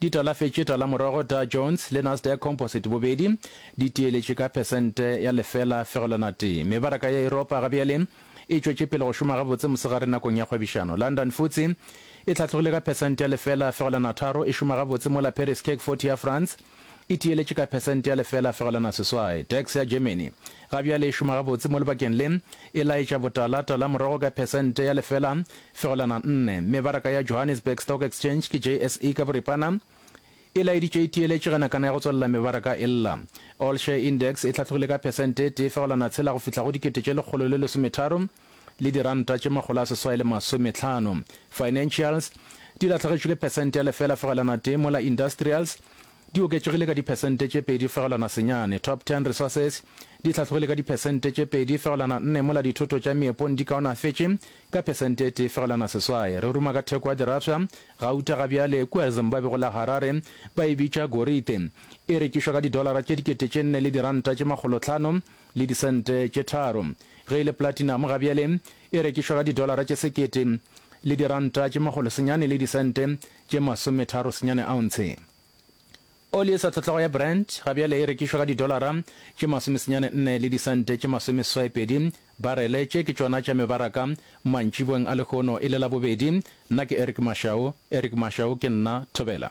Di talafetše talamorogo Dow Jones le Nasdaq Composite bobedi di tiyeletše ka phesente ya lefela fegelwana tee. Mebaraka ya Yuropa ga bjale e tšwetše pele go šoma gabotse mosegare nakong ya kgwebišano. London Futse e hlatlogile ka phesente ya lefela fegelwana tharo e šoma gabotse mola Paris CAC 40 ya France e tiyeletše ka phesente ya lefela fegelwana seswai. DAX ya Germany ga bjale e šoma gabotse mo lebakeng le e laetša botala talamorogo ka phesente ya lefela Fegelwana nne, Mebaraka ya Johannesburg Stock Exchange ke JSE ka boripana, e laeditšwe e tiyeletše ge nakana ya go tswalela mebaraka e lla. All Share Index e hlatlogile ka phesente e tee fegelwana tshela go fihla go dikete tše lekgolo le lesometharo le diranta tše makgolo a seswai le masometlhano. Financials di lahlegetšwe ke phesente ya lefela fegelwana tee mola Industrials di oketšegile ka diphesente tše pedi fegelwana senyane. Top Ten Resources di hlatlogile ka diphesente tše pedi fegelwana nne mola dithoto tša meepong di kaonafetše Ka phesente e tee fegelwana seswai, re ruma ka theko ya dirafša, gauta ga bjale, kua Zimbabwe go la Harare, ba e bitša gorite. E rekišwa ka didolara tše dikete tše nne le diranta tše makgolo tlhano le disente tše tharo. Ge e le platinum ga bjale, e rekišwa ka didolara tše sekete le diranta tše makgolo senyane le disente tše masometharo senyane ounce. Oli e sa tlhotlhago ya Brent ga bjale e rekišwa ka didolara tše masomesenyane nne le disente tše masomeseswai-pedi barele. Tše ke tšona tša mebaraka mantšiboeng a lehono e le Labobedi. Nna ke Eric Mashau. Eric Mashau ke nna. Thobela.